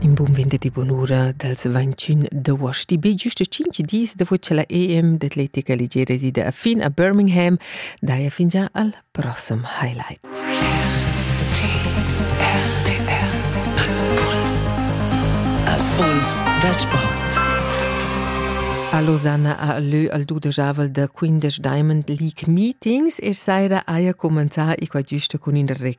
In bun venderdi bunura dals 21 d'uost. Be giusta 5 dis dopo cha la EM d'atletica ligiera resida a fin a Birmingham, daja fingià al prossem highlight. RTR Impuls Impuls dal sport A Losanna ha lö al dudejavel da 15 Diamond League Meetings e saira haja cumenzà i qua giusta cun ün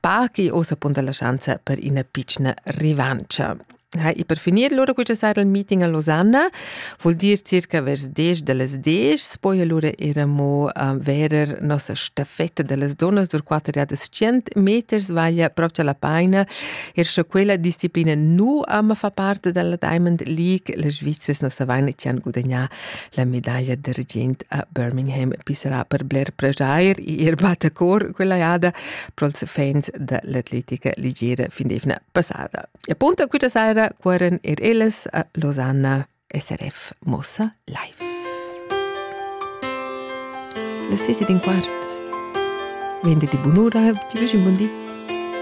par chi oz appunta la schanza per ina pitschna rivancia. Ha, e per finir lura questa sera il meeting a Losanna, vuol dir circa vers 10 de las 10, poi allora eramo a verer nossa staffetta delle donne sur 400 meters, vaglia proprio la paina, er sche quella disciplina nu ama fa parte della Diamond League, le Svizzers non sa vaina tian gudagnà La medaglia d'argient a Birmingham pissarà per bler preschair ir battacor quella jada pro'ls fans da l'atletica ligera fin d'eivna passada. E punto quista saira cuorren er ellas a Losanna SRF Mossa Live. La sesi d'in quart. Vende di bunura, ti vegi un bon di.